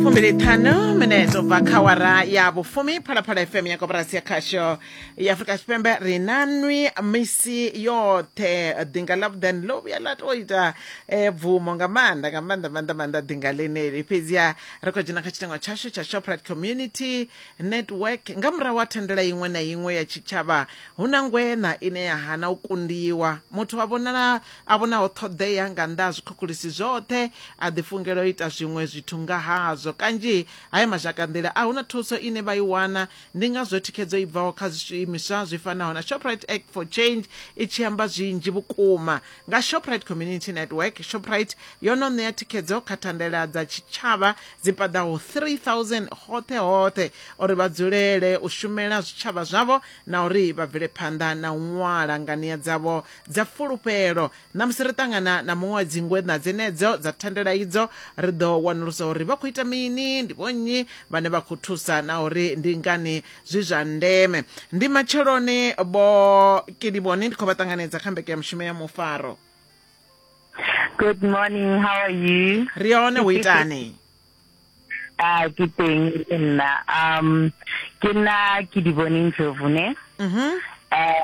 fumbiliṱhanu minetse ubva kha wara ya vhufumi phalaphala fm ya koporasi ya khasho ya afurika tshipembe ri na nwi misi yoṱhe ḓinga ḽa vhuḓani ḽo vhuya ḽa tou ita eh, bvumo nga maanḓa nga maanḓa maanḓa maanḓa ḓinga ḽeneli fhedziha ri khou dzhena kha tshitengo tshashu tsha shoprite community network nga murahu wa thandela iṅwe na iṅwe ya tshitshavha hu na ngwena ine ya hana u kundiwa muthu wa vhonala A vhonaho ṱhoḓea nga nnḓa ha zwikhukhuḽisi zwoṱhe, a ḓifungela u ita zwiṅwe zwithu nga hazwo. Kanzhi ha ima zhakanḓila, a hu na thuso ine vha i wana. Ndi ngazwo thikhedzo i bvaho kha zwiimiswa zwi fanaho na Shoprite Act for Change i tshi amba zwinzhi vhukuma nga Shoprite Community Network. Shoprite yo no ṋea thikhedzo kha thandela dza tshitshavha dzi paḓaho 3000 hoṱhe hoṱhe uri vha dzulele u shumela zwitshavha zwavho na uri vha bvele phanḓa na u ṅwala nganiya dzavho dza fulufhelo na musi ri ṱangana na muṅwe wa dzingwe na dzenedzo dza thandela idzo ri ḓo wanulusa uri vha khou ita mini ndi vhonnyi vhane vha khou thusa na uri ndi ngani zwi zwa ndeme ndi matsheloni bo kiliboni ndi khou vha ṱanganedza kha mbeke ya mushumo ya mufaro good morning how are you ri hone u itani a ah, ke teng nna um ke nna ke di boneng jovune mhm eh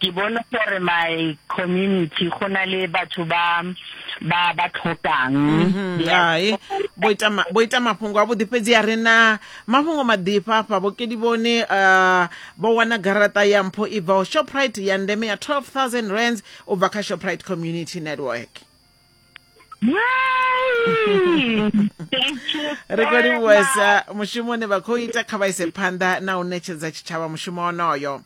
ke bone gore my community go na le batho ba ba ba tlhokang mhm, hai bo ita mafhungo a vhuḓi fhedzi a re na mafhungo maḓifha afha vhokedi vhone uh, vho wana garaṱa ya mpho i bvaho shoprite ya ndeme ya 12000 rands u bva kha shoprite community network ri khou livhuwesa mushumo une vha khou ita kha vha ise phanḓa na u ṋetshedza tshitshavha mushumo wonoyo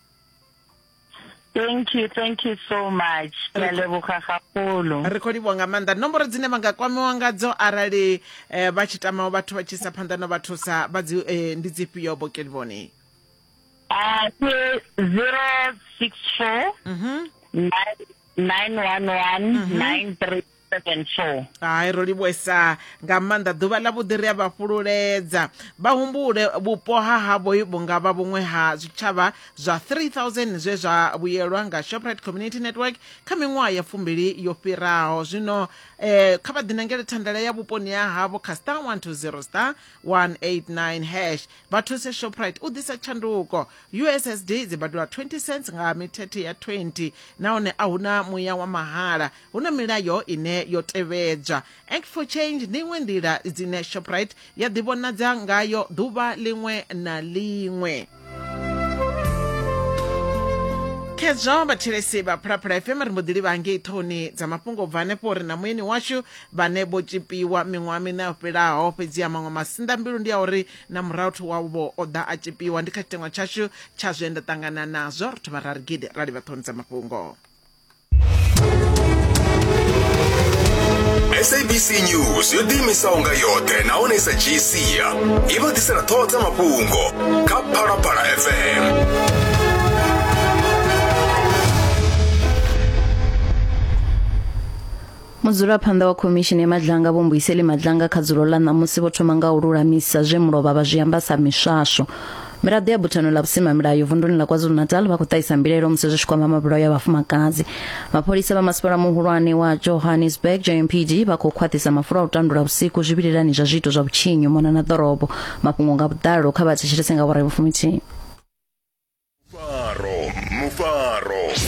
thank you thank you so much ke a leboga gagolo ri khou livhuwa nga maanḓa nomboro dzine vha nga kwamiwa ngadzo arali eh, vha tshi tamaho vhathu vha tshi sa phanḓa no vha thusa vha dzi eh, ndi dzifhio bokelivhoni a ke 064 nine one one nine three seven four hai ro livhuesa nga maanḓa ḓuvha ḽa vhuḓi ri a vha fhululedza vha humbule vhupo ha havho vhunga vha vhuṅwe ha zwitshavha zwa 3000 zwe zwa vhuyelwa nga shoprite community network kha miṅwaha ya fumbili yo fhiraho zwino eh, kha vha ḓinangele thandela ya vhuponi ha havho kha star 120 star 189 hash vha thuse shoprite u ḓisa tshanduko ussd dzi badela 20 cents nga mithethe ya 20 nahone a huna muya wa mahala Hu na milayo ine yo tevhedzwa. Act for Change ndi iṅwe nḓila dzine Shoprite ya ḓivhonadza ngayo ḓuvha ḽiṅwe na ḽiṅwe. khezwo vhathelesi vha phulaphula fm ri mbo ḓi livha ngei ṱhohoni dza mafhungo u bva hanefho uri na muyeni washu vhane vho tshipiwa miṅwaha miṋa yo fhelaho fhedzi ya maṅwe masinḓa mbilu ndi ya uri na murahu thu wavho o ḓa a tshipiwa ndi kha tshiteṅwa tshashu tsha zwe nda ṱangana nazwo ri thoma ra ri gidi ra livha ṱhohoni dza mafhungo sabc news yo ḓiimisaho nga yoṱhe nahone sa gc i vha ḓisela ṱhoho dza mafhungo kha phalaphala fm Mudzulaphanḓa wa Khomishini ya Madlanga Vho Mbuyiseli Madlanga kha dzulo ḽa ṋamusi vho thoma nga u lulamisa zwe mulovha vha zwi amba sa miswaswo. Miraḓo ya buthano ḽa vhusimamilayo vunduni ḽa KwaZulu-Natal vha khou ṱahisa mbilaelo musi zwi tshi kwama mabulayo a vhafumakadzi. Mapholisa vha masipala muhulwane wa Johannesburg JMPD vha khou khwaṱhisa mafulo a u tandula vhusiku zwivhilelani zwa zwiito zwa vhutshinyi u mona na ḓorobo. Mafhungo nga vhuḓalo kha vha thetshelese nga awara ya vhufuminthihi. Mufaro, mufaro.